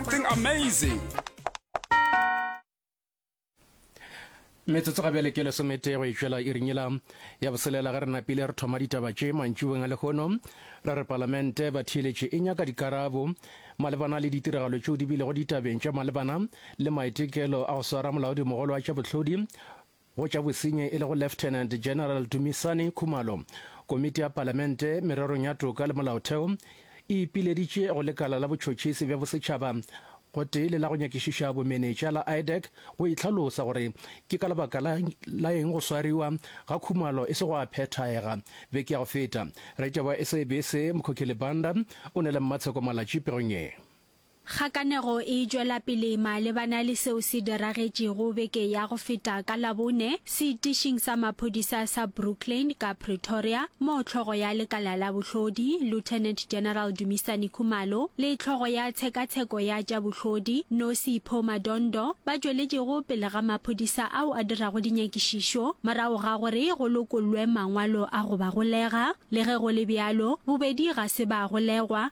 something amazing metsotso ga bjale ke lesomete go itšwela irinyela ya boselela ge re napile re thoma ditaba tše mantšubeng a lehono re re palamente ba theeletše e nyaka dikarabo malebana le ditiragalo tšeo di bilego ditabeng tša malebana le maitekelo a go swara molaodimogolo wa tša bohlodi Go tša bosenyi e lego Lieutenant General Dumisani Khumalo, Komiti ya Palamente mererong ya toka le molaotheo e ipileditše go lekala la botšhotšhisi bja bosetšhaba gotee le la go nyakišiša bomenetša la IDAC go itlhalosa gore ke ka lebaka la eng go swariwa ga Khumalo e se go a phethaega. Beke ya go feta, Retšabo wa SABC Mkhokhi Libanda o ne le Mmatsheko Malatji pegong ye. Kgakanego e tšwela pele malebana le seo se diragetšego beke ya go feta ka Labone seitišing sa maphodisa sa Brooklyn ka Pretoria, moo hlogo ya lekala la bohlodi, Lieutenant General Dumisani Khumalo, le hlogo ya tshekatsheko ya tša bohlodi, Nosi Pho Madondo, ba tšweletšego pele ga maphodisa ao a dirago dinyakišišo morago ga gore go lokollwe mangwalo a go ba golega. Le ge go le bjalo, bobedi ga se ba golegwa.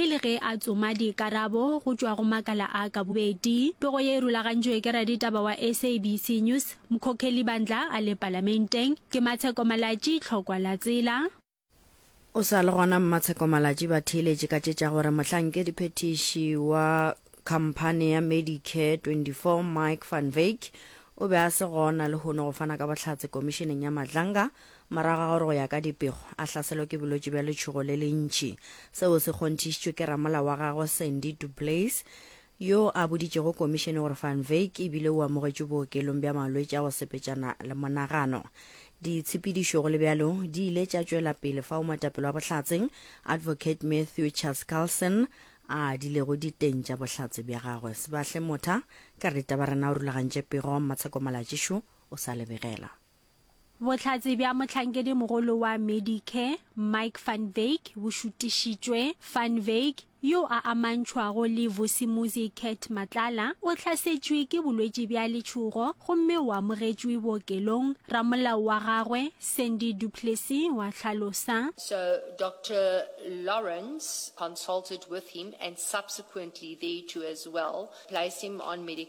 e le ge a tsoma dikarabo go tšwa go makala a ka bobedi. Pego ye e rulagantšwe ke raditaba wa SABC News, Mkhokheli Bandla a le Palamenteng. Ke Matsheko Malatši, Tlhokwa la Tsela. O sa le gona Mmatsheko Malatši ba theeletše ka tše tša gore mohlankedi-phethiši wa khamphane ya Medicare 24 Mike Van Wyk o be a se gona lehono go fana ka bohlatse Komišeneng ya Madlanga Morago ga gore go ya ka dipego a hlaselwe ke bolwetši bja letšhogo le lentši, seo se kgonthišitšwe ke ramolao wa gagwe Sandy du Plessis, yo a boditšego komišene gore Van Wyk e bile o amogetšwe bookelong bja malwetši a go sepetšana le monagano. Ditshepedišo go le bjalo di ile tša tšwela pele fao moetapele wa Bohlatse, Advocate Matthew Charles Carlson, a adilego diteng tša bohlatse bja gagwe. Sebahle Motha, ka re, Ditabarena o rulagantše pego, Mmatsheko Malatšišu o sa lebegela. Bohlatse bja mohlankedi-mogolo wa Medicare, Mike van Wyk, bo šutišitšwe. Van Wyk, yo a amantšhwago le Vusimuzi Cat Matlala, o hlasetšwe ke bolwetši bja letšhogo gomme o amogetšwe bookelong, ramolao wa gagwe, Sandy du Plessis, wa hlalosa. So Doctor Lawrence consulted with him and subsequently there too as well, placed him on Medic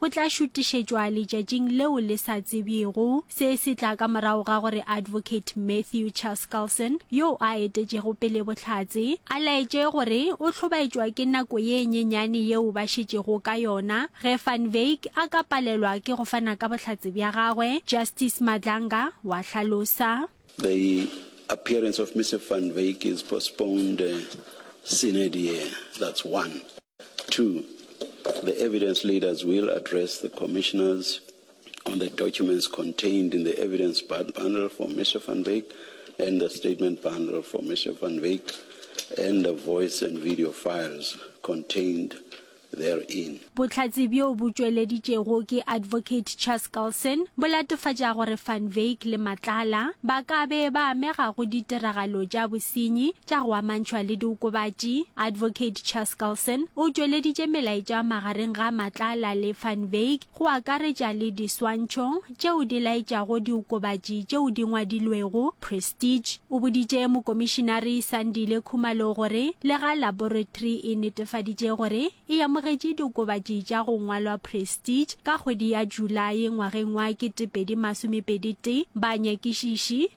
go tla šutišetšwa letšatšing leo le sa tsebjego. Se se tla ka morago ga gore Advocate Matthew Chaskalson, yo a etetšego pele Bohlatse, a laetše gore o hlobaetšwa ke nako ye nyenyane yeo ba šetšego ka yona ge Van Wyk a ka palelwa ke go fana ka bohlatse bja gagwe, Justice Madlanga wa hlalosa. The appearance of Mr Van Wyk is postponed, uh, sine die, that's one. Two, the evidence leaders will address the commissioners on the documents contained in the evidence bundle for Mr. Van Wyk and the statement bundle for Mr. Van Wyk and the voice and video files contained therein. Bohlatse bjo bo tšweleditšego ke Advocate Chas Carlson bo latofatša gore Van Wyk le Matlala ba ka be ba amega go ditiragalo tša bosenyi tša go amantšhwa le diokobatši, Advocate Chaskalson o tšweleditše melaetša magareng ga Matlala le Van Wyk, go akaretša le diswantšho tšeo di laetšago diokobatši tšeo di ngwadilwego Prestige. O boditše Mokomišinari Sandile Khumalo gore lega laboratory e netefaditše gore e amogetše diokobatši tša go ngwalwa Prestige ka kgwedi ya Julae ngwageng wa 2021, banyakišiši,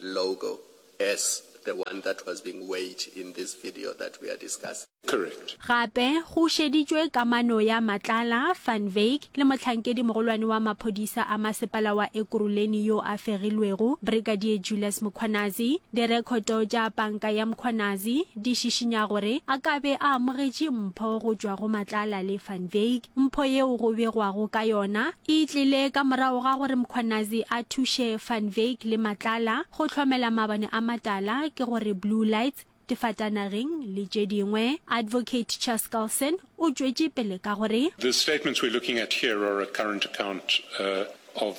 Logo, as the one that was being weighed in this video that we are discussing. Correct. Gape go šeditšwe kamano ya Matlala, Van Wyk, le mohlankedi-mogolwane wa maphodisa a masepala wa Ekurhuleni yo a fegilwego, Brigadier Julius Mkhwanazi. Direkhoto tša panka ya Mkhwanazi di šišinya gore a ka be a amogetše mpho go tšwa go Matlala le Van Wyk. Mpho yeo go begwago ka yona e tlile ka morago ga gore Mkhwanazi a thuše Van Wyk le Matlala go hlomela mabone a matala ke go re Blue Lights, Difatanageng le tše dingwe. Advocate Chaskalson o tšwetše pele ka go re. The statements we're looking at here are a current account of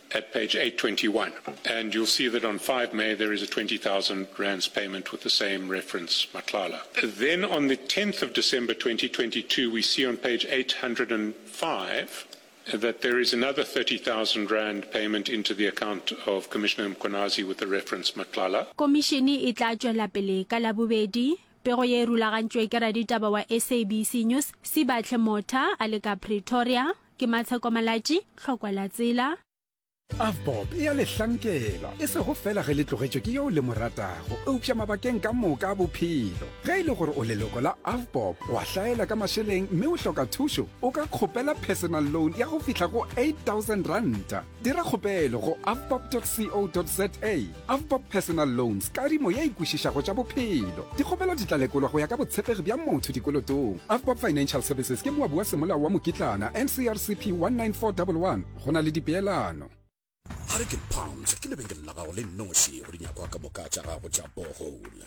at page 821 and you'll see that on 5 May there is a 20,000 rands payment with the same reference, Matlala. Then on the 10th of December 2022, we see on page 805 that there is another 30,000 rand payment into the account of Commissioner Mkhwanazi with the reference Matlala. Komišene e tla tšwela pele ka Labobedi. Pego ye e rulagantšwe ke raditaba wa SABC News, Sibahle Motha, a le ka Pretoria. Ke Matsheko Malatši, Tlhokwa la Tsela. Avbob e a le hlankela, e sego fela ge le tlogetšwe ke yeo le mo ratago, eupša mabakeng ka moka a bophelo. Ge e le gore o leloko la Avbob, o a hlaela ka mašeleng mme o hloka thušo, o ka kgopela personal loan ya go fihla go 8000 ranta. Dira kgopelo go avbob.co.za Avbob Personal Loans, kadimo ye e kwešišago tša bophelo. Dikgopelo di tla lekolwa go ya ka botshepegi bja motho dikolotong. Avbob Financial Services ke moabi wa Semolao wa Mokitlana, NCRCP 19411. Go na le dipeelano. Hurricane Pounds ke lebenkele la gago le noši go dinyakwa ka moka tša gago tša borehole.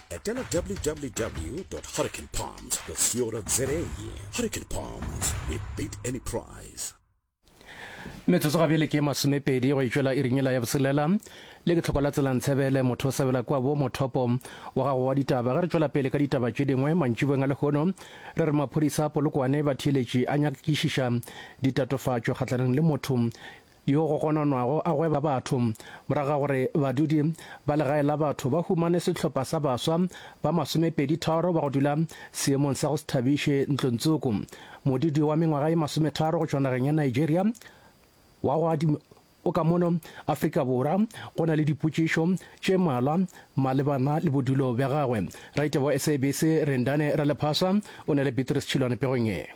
etela www hurricanepalms co za hurricane palms we beat any price metsotso ga bjele ke masomepedi go itšwela iringela ya boselela le ke tlhoko la tselantshebele motho o sebela kwa bo mothopo wa gago wa ditaba ge re tšwela pele ka ditaba tše dingwe mantšibeng a lehono re re maphodisa a polokwane ba theeletše a nyakišiša ditatofatšo kgahlanong le motho yo go gononwago a gweba batho morago ga gore badudi ba legae la batho ba humane sehlopha sa baswa ba masomepeditharo ba go dula seemong sa go se thabiše ntlontsoko modudi wa mengwaga ye masometharo go tšwa nageng ya nigeria wa go adima o ka mono afrika borwa go na le dipotšišo tše malwa malebana le bodulo bja gagwe raite wa sabc rendane ralephasa o ne le beatrice tšhilwane pegong ye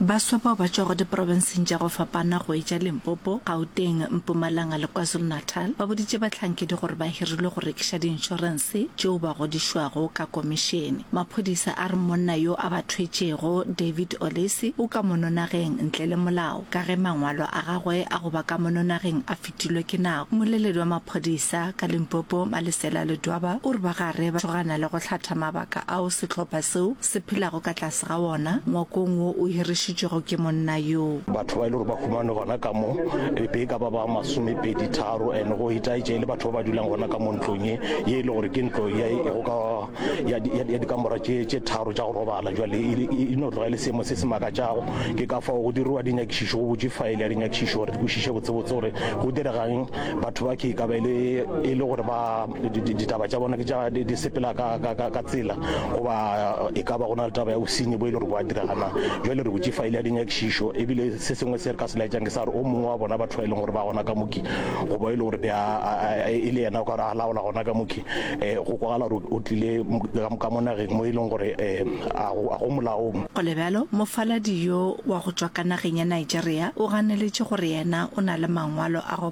Baswa bao ba tšwago diprobenseng tša go fapana go etša Limpopo, Gauteng, Mpumalanga le KwaZulu-Natal ba boditše bahlankedi gore ba hirilwe go rekiša diinšorense tšeo ba godišwago ka komišene. Maphodisa a re monna yo a ba thwetšego, David Olesi, o ka mononageng ntle le molao ka ge mangwalo a gagwe a go ba ka mononageng a fetilwe ke nako. Mmoleledi wa maphodisa ka Limpopo, Malisela Ledwaba, o re ba gare ba tšhogana le go hlatha mabaka ao sehlopha seo se phelago ka tlase ga wona ngwakong wo o hirišitšwego ke monna yo. Batho ba e le gore ba humane gona ka mo e be e ka ba ba masomepedi tharo and go itaetša e le batho ba ba dulang gona ka mo ntlong ye ye e le gore ke ntlo ya e go ka ya ya dikamora tše tše tharo tša go robala jwale e, e, e no tloga e le seemo se se makatšago ke ka fao go diriwa dinyakišišo go botše faele ya dinyakišišo gore di kwešiše botsebotse gore go diregang batho ba ke e ka ba e le e le gore ba ditaba tša bona ke tša di, di sepela ka, ka, ka, ka tsela goba e ka ba go na le taba ya bosenyi bo e le gore bo a diragana jale re botše faile ya dinyakišišo ebile se sengwe se re ka se laetšang ke sa gore o mongwe wa bona batho ba e leng gore ba gona ka moki goba e le gore e le yena o ka gore a laola gona ka moki um go kwagala gore o tlile ka mo nageng mo e leng gore um a go molaong go le bjalo mofaladi yo wa go tšwa ka nageng ya nigeria o ganeletše gore yena o na le mangwalo a go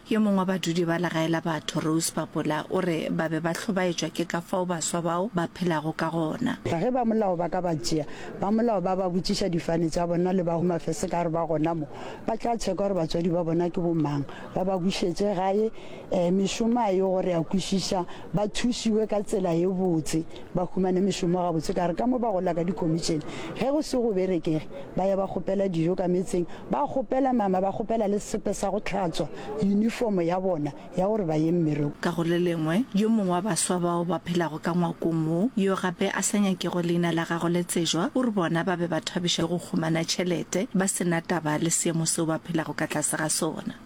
Yo mongwe wa badudi ba legae la batho, Rose Papola, o re ba be ba hlobaetšwa ke ka fao baswa bao ba phelago ka gona. Ka ge ba molao ba ka ba tšea, ba molao ba ba botšiša difane tša bona le ba go mafese ka gore ba gona mo, ba tla tšheka gore batswadi ba bona ke bomang, ba ba bušetše gae, ee, mešomo a e yo gore a kwešiša ba thušiwe ka tsela ye botse, ba humane mešomo gabotse ka re ka mo ba gola ka dikomitšene, ge go se go berekege ba ya ba kgopela dijo ka metseng, ba kgopela nama, ba kgopela le sepe sa go hlatswa yunifomo ya bona ya gore ba ye mmerekong. Ka go le lengwe, yo mongwe wa baswa bao ba phelago ka ngwakong wo, yo gape a sa nyakego leina la gagwe le tsejwa, o re bona ba be ba thabišwa ke go humana tšhelete ba se na taba le seemo seo ba phelago ka tlase ga sona.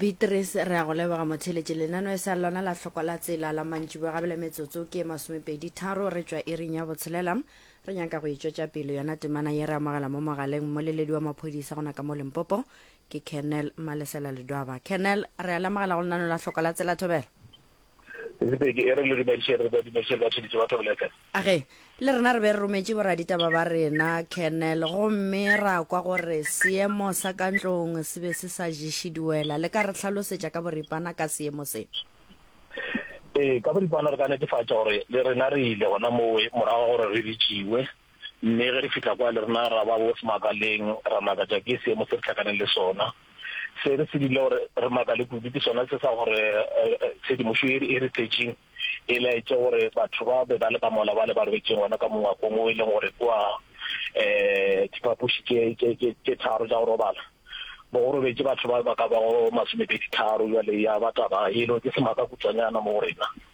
Beatrice, Re a go leboga motheeletši. Lenano e sa lona la hloko la tsela la mantšiboa gabele metsotso ke e masomepedi tharo re tšwa iring ya botshelela. Re nyaka go e tšwetša pele yona temana ye re amogela mo mogaleng mmoleledi wa maphodisa gona ka mo Limpopo ke Colonel Malesela Ledwaba. Colonel, re a le amogela go lenano la hloko la tsela. Thobela. Ge le rena re be re rometše boraditaba ba rena, Colonel, gomme ra kwa gore seemo sa ka ntlong se be se sa ješe diwela, le ka re hlalosetša ka boripana ka seemo se? Ee, ka boripana re ka netefatša gore le rena re ile gona mowe morago ga gore re bitšiwe. Mme ge re fihla kwa, le rena ra ba bos makaleng, ra makatša ke seemo se re hlakaneng le sona. Se re se dirile gore re makale kudu ke sona se sa gore tshedimošo ye e re tletšeng e laetše gore batho ba be ba le ka mola bale ba robetše gona ka mongwakong wo e leng gore ke wa um diphapoši tše tharo tša go robala, mo go robetše batho ba ba ka bago masomepedi tharo. Bjale ya ba taba yeno ke semaka kutšwanyana mo go rena.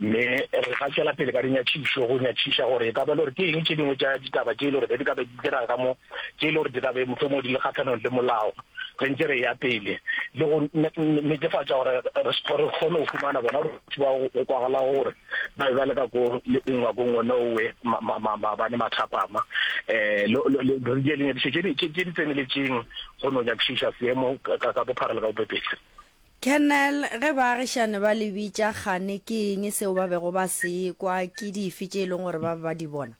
Mme re ka tšwela pele ka dinyatšišo go nyatšiša gore e ka ba le gore ke eng tše dingwe tša ditaba tše e le gore be di ka be di diraga ka mo tše e le gore di ka be mohlomong di le kgahlanong le molao re ntse re ya pele le go netefatša gore re re kgone go fumana bona batho ba go kwagala gore ba be ba le ka ko le nngwa ko ngwe nowe maabane mathapama um re di dinyakišo tše di tseneletšeng go no nyakišiša seemo ka bophara le ka bopepetla Colonel, Ge baagišani ba le bitša kgane ke eng seo ba bego ba se kwa, ke dife tše e leng gore ba be ba di bona?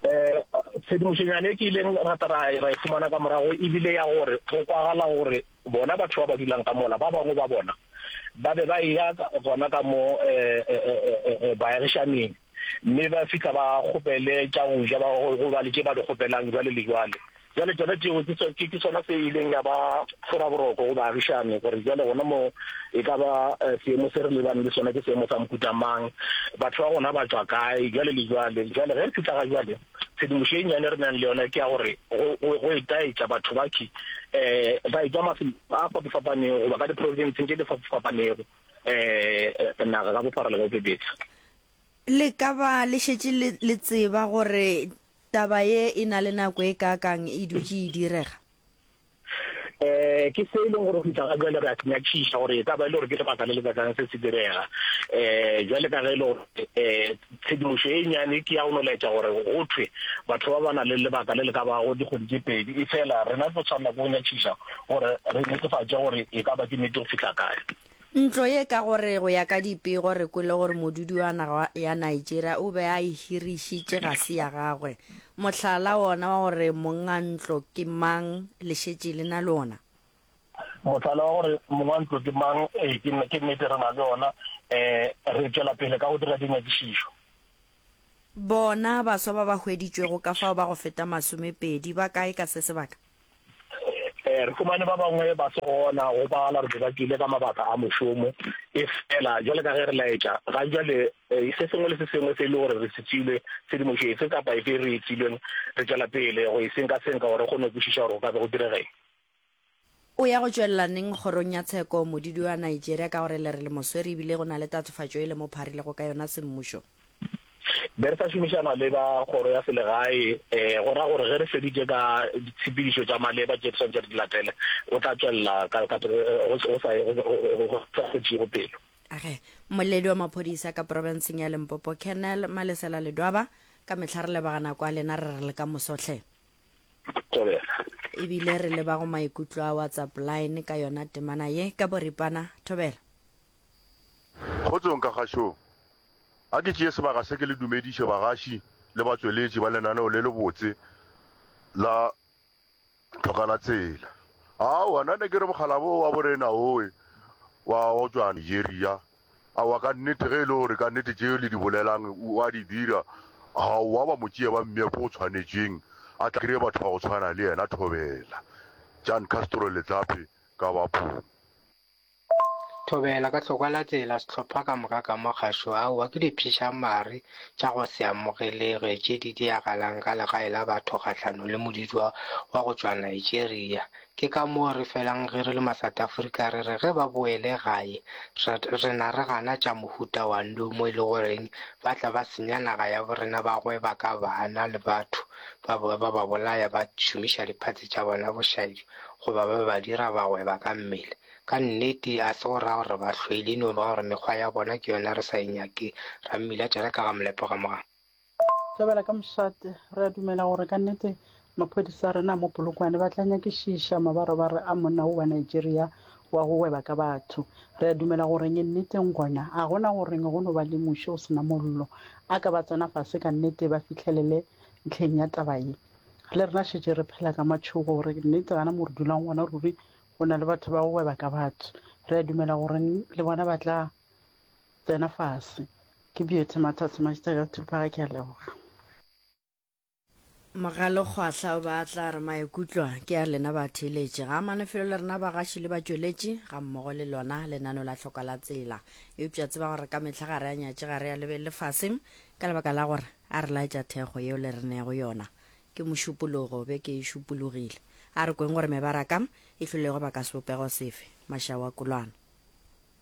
Ee, tshedimošonyana e ke ileng ra tla ra e fumana ka morago e bile ya gore go kwagala gore bona batho ba ba dulang ka mola ba bangwe ba bona ba be ba eya gona ka mo baagišaning. mme ba fihla ba kgopele tša go ja, go ba le tše ba di kgopelang jwale le jwale. Jwale tšona tšeo ke sona se ileng ya ba fora boroko go baagišani gore jwale gona mo e ka ba eh, seemo se re lebane le sona ke seemo sa mohuta mang, batho ba gona ba tswa kae, jwale le jwale. Jwale ge re fihla ga jwale tshedimošo e nnyane re nang le yona ke ya gore go etaetša batho baki um eh, ba e tswa mafelo a fapafapanego goba ka diprovinseng tše di fapafapanego Eh, naga ka bophara le ka bobebetsa. Le ka ba le šetše le, le tseba gore taba ye e na le nako e kaakang e dutše e direga? eh ke se e leng gore go fitlha ga jale re a senyakšiša gore e ka ba e le gore ke lebaka le le kakang se se direga eh jale ka ge e le gore eh Tshedimošo e nnyane ke ya go no laetša gore go thwe batho ba ba na le lebaka le le ka bago dikgwedi tše pedi, efela rena re tlo swanela ke go nyatšiša gore re netefatše gore e ka ba ke nnete go fihla kae. Ntlo ye ka gore go ya ka dipego re kwele gore modudi wa naga ya Nigeria o be a e hirišitše ga se ya gagwe. Mohlala wona wa gore mongangntlo ke mang le šetše le na le wona. Mohlala wa gore mong wa ntlo ke mang, ee, ke nne, ke nnete re na le ona. Um re tšwela pele ka go dira dinyakišišo. Bona baswa ba ba hweditšwego ka fao ba go feta masomepedi. Ba kae ka se sebaka? Um re fumane ba bangwe ba se gona go bala, re be ba tswile ka mabaka a mošomo. Efela bjale ka ge re laetša, ga bjale um se sengwe le se sengwe se e le gore re se tšwile, tshedimošo efe kapa efe e re e tšwileng, re tšwela pele go e senkasenka gore re kgone go kwešiša gore go ka be go direga eng. O ya go tšwelela neng kgorong ya tsheko modidu wa Nigeria ka gore le re le moswere ebile go na le tatofatšo e le mo pharilego ka yona semmušo? Be re sa šomišana le ba kgoro ya selegae, go ra gore ge re feditše ka ditshepedišo tša maleba tše re swanetše re di latele, o tla tšwelela ka go sa kgotšego pelo. Ge mmoledi wa maphodisa ka profenseng ya Limpopo, Colonel Malesela Ledwaba, ka mehla re lebagana kwa lena re re le ka moso hle. Thobela. Ebile re leba go maikutlo a WhatsApp line ka yona temana ye ka boripana. Thobela. Kgotsong ka kgašong. A ke tšee sebaka se ke le dumediše bagaši le batšweletši ba lenaneo le lebotse la Tlhokanatsela. Aowa, nna ne ke re mokgalabo o wa bo rena owe wa go tšwa Nigeria Aowa, ka nnete, ge e le gore ka nnete tše le di bolelang o a di dira, ga wa ba mo tšea ba mmea ko o tshwanetšweng a tla kry-e batho ba go tshwana le yena. Thobela, Jan Castro Letlape, Kabapong. Thobela, Ka hlokwa la tsela sehlopha ka moka ka mo gašo, aowa ke dipšhišamare tša go se amogelege tše di diragalang ka legae la batho kgahlano le moditšwa wa go tšwa Nigeria, Ke ka moo re felang ge re le ma-South Africa re re ge ba boele gae re, re na re gana tša mohuta wa ndu mo e le goreng ba tla ba senya naga ya borena ba gweba ka bana le batho ba bowe ba ba bolaya ba šomiša diphatse tša bona bošaedi goba ba ba dira ba gweba ka mmele. Ka nnete a se go raya gore ba hlwele e no ba gore mekgwa ya bona ke yona re sa e nyake, Rammila tšereka ga molepo ga moga. Tlabela ka mošate, re a dumela gore ka nnete maphodisa a rena a mo Polokwane ba tla nyakišiša mabarobaro a monna wo wa Nigeria wa go gweba ka batho. Re a dumela gore nge nneteng gona ga go na gore nge go no ba le muši o se na mollo. A ka ba tsena fase ka nnete ba fihlelele ntlheng ya taba ye. Le rena šetše re phela ka matšhogo gore ke nnete gana mo re dulang gona ruri go na le batho ba go gweba ka batho. Re a dumela gore le bona ba tla. Tsena fase. Ke Beauty Mathats Mashita ka Thuphaga ke a leboga. Mogalokgwahla o be a tla re maikutlwa ke a lena batheeletši ga a manefelo le rena bagaši le batšweletši gammogo le lona lenaneo la tlhoka la tsela eupša tseba gore ka mehla ga re a nyatše ga re a lebelele fase ka lebaka la gore a re laetša thekgo yeo le re neego yona ke mošupologo be ke e šupologile a re kweng gore mebaraka e hlolego baka sebopego sefe mašaoakolwana